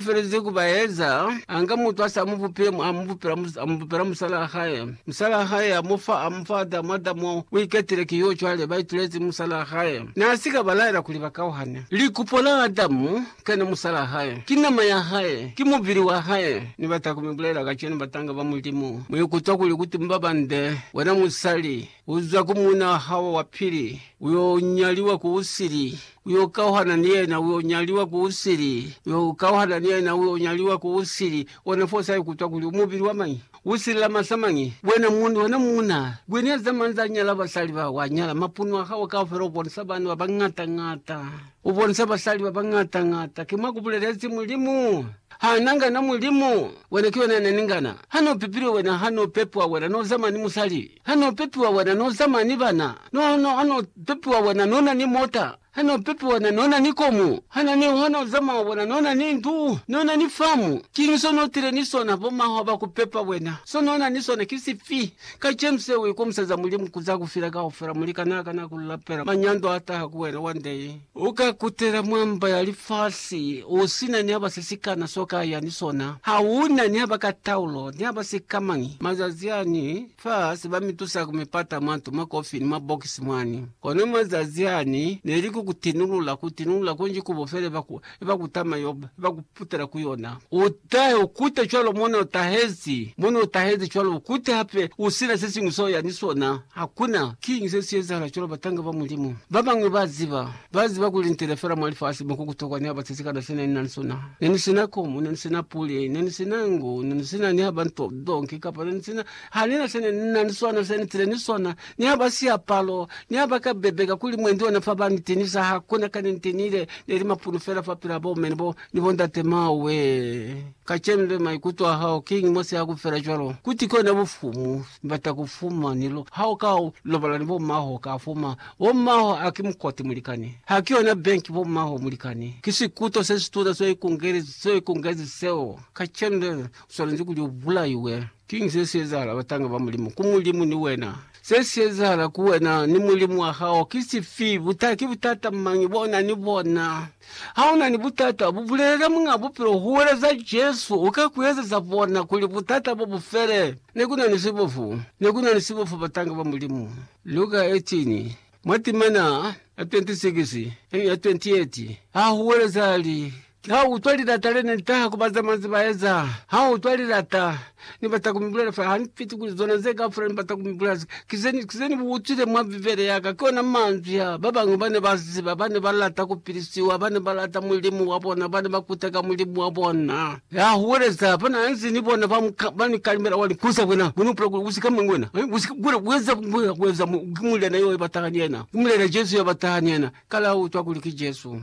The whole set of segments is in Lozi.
felezi ku ba eza, a nga mutu ha si amubupile, mu amubupela, amubupela musalaa hae. Musalaa hae a mu fa, a mu fa Adamu, Adamu u iketile ki yo cwale, ba itulezi musalaa hae. Na si ka ba laela kuli ba kauhane. Likupo la Adamu ka ne musalaa hae, ki nama ya hae, ki mubili wa hae. Ni bata ku mi bulela kacenu, batanga ba Mulimu, mu ikutwa kuli ku tumba bande, wena musali, Uza ku muna hao wa pili, uyo nyaliwa ku usili, uyo kauhana ni yena, uyo nyaliwa ku usili, uyo kauhana ni yena, uyo nyaliwa ku usili. Ona fo sa ikutwa kuli umubili wa mañi, usili la masa mañi. Wena mundu, wena muna, kwi ni eza manza a nyala basali ba wa nyala, mapunu a hao kaufela ubonisa bana ba bañata ñata, ubonisa basali ba bañata ñata. Ki mwa ku bulelezi Mulimu. Ha na ngana Mulimu, wena ki wena ya na ni ngana. Ha no pepilwe wena, ha no pepwa wena, no zama ni musali. Ha no pepiwa wena no zamaya ni bana, no no ha no pepiwa wena no na ni mota, ha no pepiwa wena no na ni komu, ha no ni ha no zamaya wena no na ni ndu, no na ni famu. Kiñi so no tile ni sona bo mahwa ba ku pepa wena? So no na ni sona ki sifi? Kacenu se u ikomisaza Mulimu ku za ku fila kaufela, mulikanaa kana ku lapela manyando a taha ku wena wa ndeñi. U ka kutela mwa mba ya lifasi u si na ni haba se si kana s'o ka ya ni sona. Ha u na ni haba ka taulo, ni haba si ka mañi. Mazazi ani, fa si ba mi tusa ku mi pata mwa nto, mwa kofi, ni mwa bokisi mwani. Kono mazazi ani, ne li ku ku tinulula, ku tinulula kunji ku bo fela iba ku, iba ku tama yo, iba ku. Kutela ku yona. Utahe, ukute cwalo mone utahezi, mone utahezi cwalo, ukute hape, usina sesiñwi seo yani sona. Hakuna. Kiñi se si ezahala cwalo, batanga ba Mulimu babañwi ba ziba? Ba ziba kuli nitele fela mwa lifasi mo ku kutokwa ni haba sesikana sene ni na ni sona. Ne ni sina komu, ne ni sina puli, ne ni sina ngu, ne ni sina ni haba nto zonke, kapa ne ni sina, hanina sene ni na ni sona, se nitile ni sona. Niha ba siapalo, niha ba ka bebeka kuli mwendi ona fa ba niteñisa, ha ku na kani nte nile ne li mapunu fela fa pila bo mme ni bo, ni bo ndate mao we. Kacenu le maikuto a hao kiñi mwa siha ku fela cwalo? Kuti kona bufumu ni bata ku fuma ni lo, ha u ka lobala ni bo mmaho u ka fuma. Bo mmaho a ki mukoti mulikani. Ha ki yona bank bo mmaho mulikani. Ki sikuto se situna seo ikungezi, seo ikungezi seo. Kacenu le u swanezi kuli u bulaiwe. Kiñi se si ezahala batanga ba Mulimu ku Mulimu ni wena? Se si ezahala ku wena ni Mulimu wa hao ki sifi? Buta, ki butata mañi bo na ni bona? Ha u na ni butata, bu bulelele Muñ'a Bupilo, huweleza Jesu, u ka ku ezeza bona kuli butata bo bu fele. Ne ku na ni sibofu. Ne ku na ni sibofu batanga ba Mulimu. Lu ka etiñi? Mwa timana ya 26 ni ya 28 ha huweleza li, Ha u utwa lilata le ne li taha ku bazamazi ba eza, ha u utwa lilata ni bata ku mi bulela fa, ha ni fiti kuli zona ze kaufela ni bata ku mi bulela. Ki ze ni, ki ze ni bu utwile mwa Bibele ya ka, ki ona manzwi a ba bañwi ba ne ba ziba, ba ne ba lata ku pilisiwa, ba ne ba lata Mulimu wa bona, ba ne ba kuteka Mulimu wa bona. Ya huweleza ba na nzi ni bona ba ni kalimela wa likuza kwena, Bona, u pula kuli u si ka mwa wena, u si ka kula ku eza ku ya ku eza mo, ki muliana yo ya ba taha ni yena, ku muliana Jesu ya ba taha ni yena. Kala u utwa kuli ki Jesu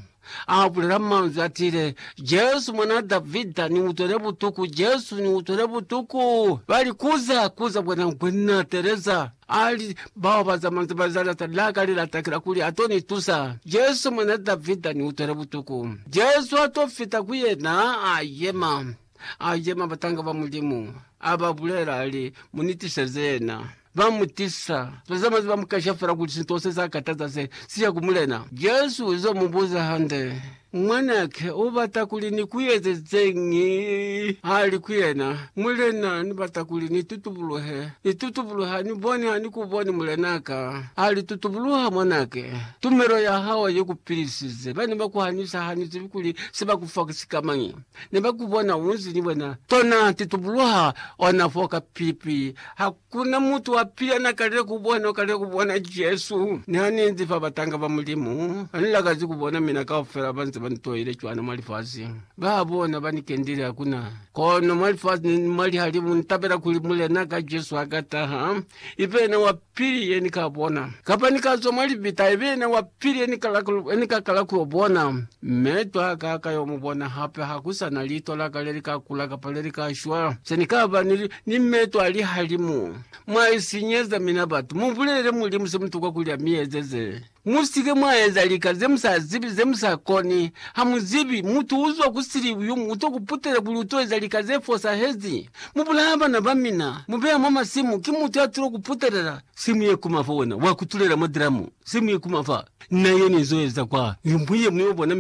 a bulela manzwi a tiile, Jesu, Mwan'a Davida, ni utwele butuku! Jesu, ni utwele butuku! Ba likuza, kuza kwena, Nkwe, ni na teeleza. A li, Bao ba za manzwi ba Zanata la ka li lata ki la kuli a to ni tusa. Jesu, Mwan'a Davida, ni utwele butuku. Jesu a to fita ku yena, a yema. A yema, batanga ba Mulimu a ba bulela, a li, Mu ni tiseze yena. Ba mu tisa. Ba za manzwi ba mu kasha fela kuli sinto se sa kataza se, si ya ku Mulena. Jesu u zo mu buza hande. Mwanake u bata kuli ni ku ezezeñi? Ha li ku yena, Mulena, ni bata kuli ni tutubuluhe. Ni tutubuluhe, ha ni boni, ha ni ku boni, mulenaka. A li, Tutubuluha, mwanake. Tumelo ya hao i ku pilisize. Ba ne ba ku hanisa, ha ni zibi kuli se ba ku fa ki sikamañi. Ne ba ku bona u nzi ni wena. Tona, tutubuluha, ona foo ka pipi. Ha Kuna mutu wa pila na kalile ku bona, u kalile ku bona Jesu ni ha ni inzi fa batanga ba Mulimu. Ha ni lakazi ku bona mina kaufela ba nze ba ni toile cwana mwa lifasi. Ba bona ba ni kendile hakuna. Kono mwa lifasi ni mwa lihalimu ni tabela kuli Mulena ka Jesu ha ka taha, i be yena wa pili ye ni ka bona. Kapa ni ka zwa mwa libita, i be yena wa pili ye ni ka kala ku yo bona. Mme twa ka ka yo mu bona hape, ha ku sa na litwa la ka le li ka kula kapa le li ka shwa. Se ni ka ba ni, ni mme twa lihalimu. Mwa sinyeza mina batu. Mu bulelele Mulimu se mu tokwa kuli a mi ezeze. Mu si ke mwa eza lika ze mu sa zibi, ze mu sa koni. Ha mu zibi, mutu u zwa ku sili yo mu to ku putela kuli u to eza lika ze fosahezi. Mu bulaya bana ba mina, mu beya mwa masimu, ki mutu ya tulo ku putelela. Se mu ye kuma fa wena, wa kutulela mwa dramu. Se mu ye kuma fa. Na yena izo eza kwa limbwi yemuñwi, obona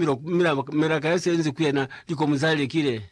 milaka ya sienzi ku yena, likomu za lekile.